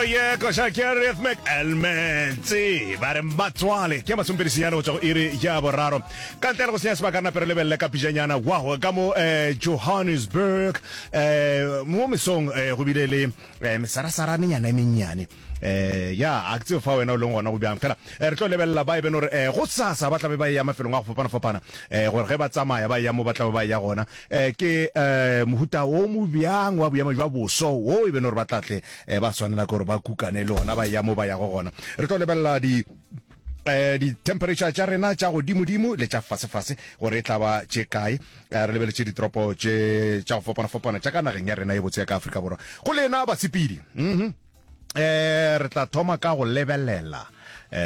Oh yeah, koša ke rhythmic elements ba re batswale ke masompedisinyana go tswa go iri ya boraro ka ntle le go senya sebaka re napere lebelele ka pijanyana wow ka mo eh, johannesburg eh, mo mesong eh, go bile le eh, mesarasaranenyana e mennyane eh ya a ke tseo fa wena o leng gona go bjang fela eh, re tlo lebelela ba e beno gore eh, go sasa ba tlabe ba e ya mafelong a go fapana-fapana eh, gore ge ba tsamaya ba e ya mo ba tlabe ba e ya gona Ke mohuta wo mo bjang wa boemo bja boso wo e beno gore ba tla tle ba swanela gore ba kukane le ona ba ya mo ba yago gona? Re tlo lebelela di dithemphereitšha tša rena tša godimodimo le tša fasefase gore e tla ba tše kae re lebeletše ditoropo tše tša go fapana-fapana tša ka nageng ya rena e botse ya ka afrika borwa go lena basepedi um re tla thoma ka go lebelela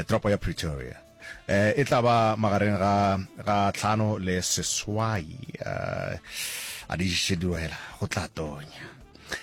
toropo ya pretoria Eh, e tla ba magareng ga ga tlhano le seswai eh, a di šediwela go tla tonya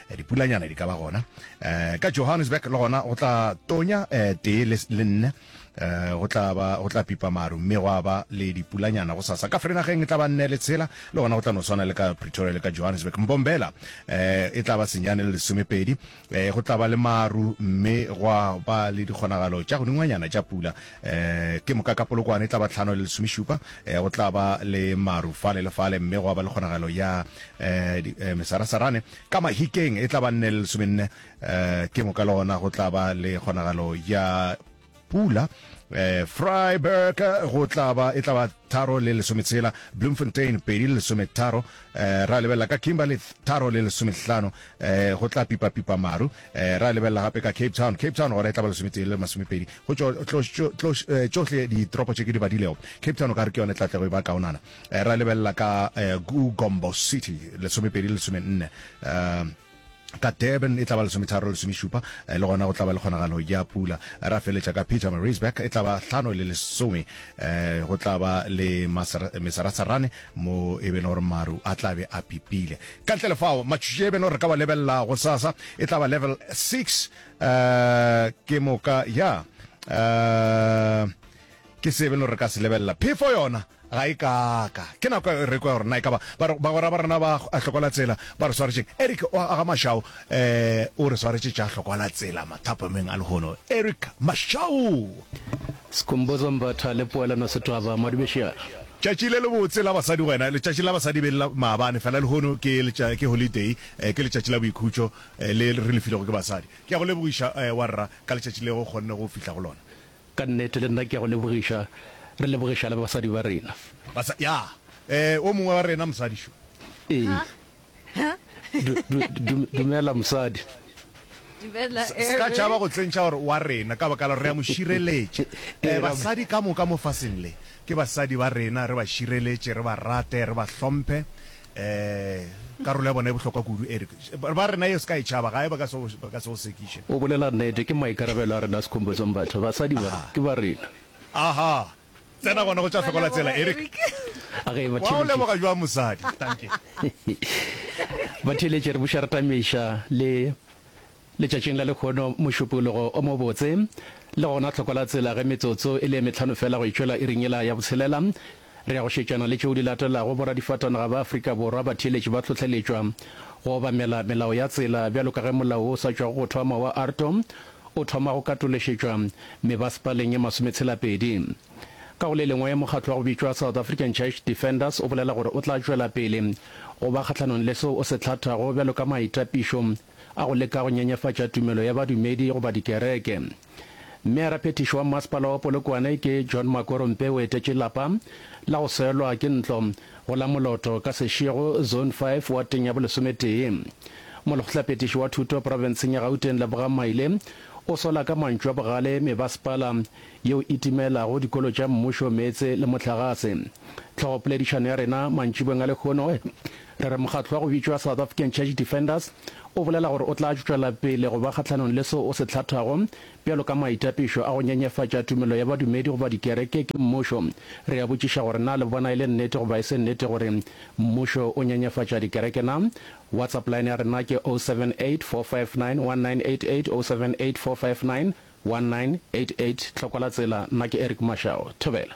Eh, dipulanyana di ka ba gona Eh, ka johannesburg le gona go tla tonya eh, tee le le nne Eh, go tla ba go tla pipa maru mme gwa ba le dipulanyana go sasa ka frenageng e tla ba nne le tshela le gona go tla no swana le ka pretoria le ka johannesburg mbombela eh, e tla ba senyane le lesomepedi Eh, go tla ba le maru mme gwa ba le dikgonagalo tša godingwanyana tša pula eh, ke moka ka polokwane e tla ba tlhano le lesomešupa eh, go tla ba le maru fale le fale mme gwa ba le kgonagalo ya eh, di- eh, mesarasarane ka mahikeng e tla ba nne le lesomenne eh, ke moka le gona go tla ba le kgonagalo ya pula eh, freiburg go tlaba e tlaba tharo le lesometshela bloemfontein pedi le lesometharo eh, ra lebelela ka kimberley tharo le lesomehlano eh, go tla pipapipa maru eh, ra lebelela gape ka cape town cape town gona e tlaba lesometee le masomepedi go eh, tšohle ditoropo tše ke di badilego cape town o ka re ke yone tlatlego e ba kaonana eh, ra lebelela ka eh, gombo city lesomepedi le lesomenne eh, ka Durban e tla ba lesometharo le lesomešupa, le gona go tla ba le kgonagalo ya pula. Ra feletša ka Pietermaritzburg e tla ba hlano le lesome, go tla ba le mesarasarane mo e beno gore maru a tla be a pipile. Ka ntle le fao, matšatši e beno re ka wa lebelela gosasa e tla ba level six ke moka ya ke se e beno re ka se lebelela. Phefo yona Ga e kaaka ke nako ya Eriko ya gore na e ka ba bagwera ba rena ba a hlokola tsela ba re swaretšeng. Eric o a ga Mashau o re swaretše tša hlokola tsela mathapameng a lehono. Eric Mashau! Skhumbuzo Mbatha le Poelano Sethaba Madubeshiana. Tšatši le lebotse la basadi gwena, letšatši la basadi be le la maabane fela lehono ke ke holiday, ke letšatši la boikhutšo le re le filego ke basadi. Ke a go lebogiša wa rra ka letšatši le go kgonne go fihla go lona. Ka nnete, le nna ke a go lebogiša. Re lebogiša le basadi ba rena. Basa, ya. Ee, o mongwe wa rena, mosadi šo. Ee. Du, du, du, dumela, mosadi. Dumela, Sa, sa tšhaba go tsentšha gore wa rena, ka baka la gore re a mo šireletša. Ee, basadi ka moka mo faseng le, ke basadi ba rena, re ba šireletše, re ba rate, re ba hlomphe. Ee, karolo ya bona e bohlokwa kudu, Eric. Ba rena yeo se ka e tšhaba, gae ba ka se go, ba ka se go sekiše. O bolela nnete, ke maikarabelo a rena sekhompetsong batho. Basadi ba, ke ba rena. Aha! Tsena gona go tša hlokola tsela, Eric. A ge e ba theeletše. Wa o leboga bjang mosadi? Dankie. Ba theeletše re buša re tamiša le. Letšatšing la lehono, mošupologo o mobotse, le gona tlhoko la tsela, ge metsotso e le e mehlano feela go e tšwela iring yela ya botshelela, re ya go šetšana le tšeo di latelago, Boradifatanaga ba Afrika Borwa ba theeletše ba hlohleletšwa go obamela melao ya tsela, bjalo ka ge molao wo o sa tšwago go thoma wa ARTO o thoma go katološetšwa mebasepaleng e masometshela-pedi. Ka go le lengwe, mokgatlo wa go bitšwa South African Church Defenders o bolela gore o tla tšwela pele go ba kgahlanong le seo o se hlathago bjalo ka maitapišo a go leka go nyenyefatša tumelo ya badumedi goba dikereke. Meyara phethiši wa Mmasepala wa Polokwane ke John Makoro Mpe o etetše lapa la go selwa ke ntlo go la Moloto ka Seshego, Zone Five, wateng ya bolesometee. Molekgotlapetiši wa Thuto profenseng ya Gauteng Lebogang Maile o sola ka mantšu a bogale mebasepala yeo e timelago dikolo tša mmušo meetse le mohlagase. Tlhogopoledišano ya rena mantšibeng a lehono Re re mokgatlo wa go bitšwa South African Church Defenders o bolela gore o tla tšwela pele go ba kgahlanong le seo o se hlathago bjalo ka maitapišo a go nyenyefatša tumelo ya badumedi goba dikereke ke mmušo. Re a botšiša gore na le bona e le nnete goba e se nnete gore mmušo o nyenyefatša dikereke na? WhatsApp line ya rena ke 0784591988, 0784591988. Tlhoko la tsela, nna ke Eric Mashao. Thobela.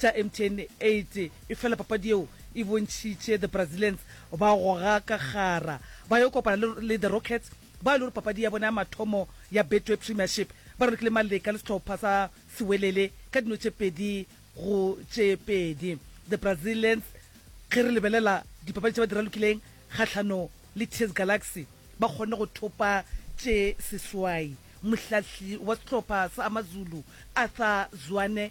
tša mtn 8 efela papadi yeo e bontšhitše the Brazilians ba goga ka kgara ba yo kopana le le the Rockets bao e lego papadi ya bona ya mathomo ya Betway Premiership ba rorokile maleka le sehlopha sa Sewelele ka dino tše pedi go tše pedi. The Brazilians ge re lebelela dipapadi tše ba di ralokileng kgahlano le TS Galaxy ba kgonne go thopa tše seswai. Mohlahli wa sehlopha sa Amazulu Arthur Zwane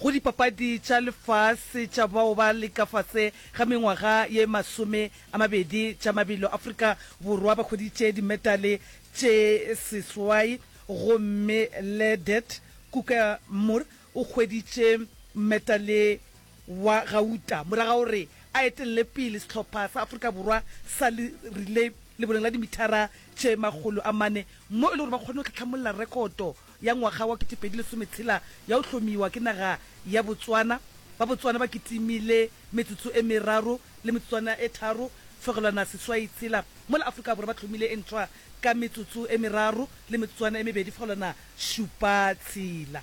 Go dipapadi tša lefase tša bao ba le ka fase ga mengwaga ye masome a mabedi tša mabelo, Afrika Borwa ba hweditše dimetale tše seswai gomme Ledet Kukar Moore o hweditše metale wa gauta mora ga gore a etelele pele sehlopha sa Afrika Borwa sa relay leboleng la dimithara tše makgolo a mane mo e le gore ba kgonne go tlhatlhamolla rekoto ya ngwaga wa kete pedi lesome tshela ya go hlomiwa ke naga ya Botswana. Ba Botswana ba kitimile metsotso e meraro le metsotswana e tharo fegelwana seswai tshela mola Afrika Borwa ba hlomile e ntshwa ka metsotso e meraro le metsotswana e mebedi fegelwana šupa tshela.